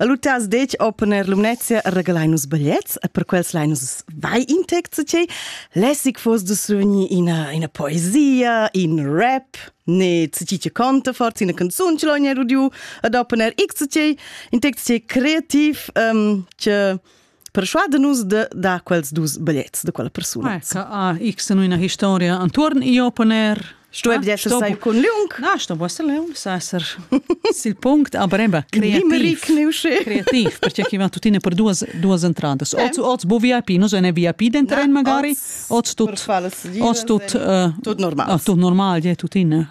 E lu tas detg opponer Lumnezia regalai nus bigliets e per quels lai nus vai in tec ce lässig fos du sugni ina ina poesia in rap ne ci ci conta forza ina canzun ce l'ogni rudiu ad opponer x ce in tec ce creativ um, che Persuade nus de dar quels dus biglets de quella persuna. Ah, ah x in una historia anturn io poner Sto ah, eb sai cun liung? Na, sto bo liung, sa ser sil punct a breba kreativ. Kreativ, perché che va tutine per duas duas entradas. Oz oz bo VIP, no ne VIP den tren magari. Oz tut oz tut eh, tut normal. Ah, tut normal, je tutine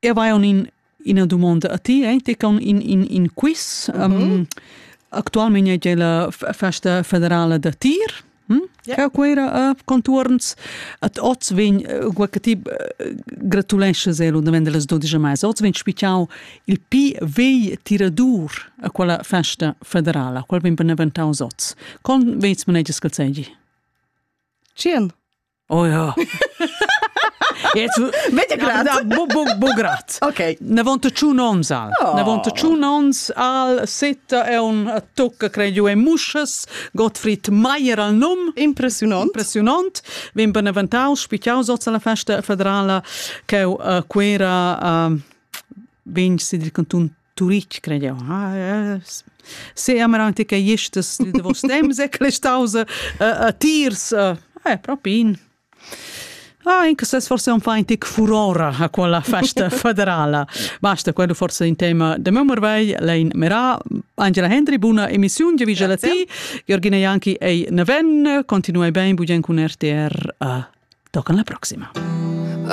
Eu vai on in ina dumonda a ti, eh? Ti con in in in quiz. Mm -hmm. um, actualment è la festa federale da tir. Hm? Yeah. Ja, quella uh, conturns at oz vegn guacati gratulesce zelo da vende las 12 mais oz vegn spichau il pi vei tiradur a quella festa federala qual vegn beneventau oz con veits maneges calzegi Cien Oh ja. Bograt. Ok. Ne vont tschun ons al. Ne vont tschun ons al setta è un tocca cre giù e muscas, Gottfried Meier al num. Impressionant. Impressionant. Vin beneventau spichiau soz alla festa federala che uh, quera uh, vegn si dil cantun Turitg cred jau. Ah, se amar anche che jestes de vos temps e clestausa a tirs eh propi in Ah, in ses forse un feintic furora a quella festa federala. Basta quello forse in tema de Mömmerwey, lein Mera, Angela Hendry, buona emissione di Vigelati, Giorgina Janki e Neven, continuai ben bugen con RTR. Uh, toccan la prossima.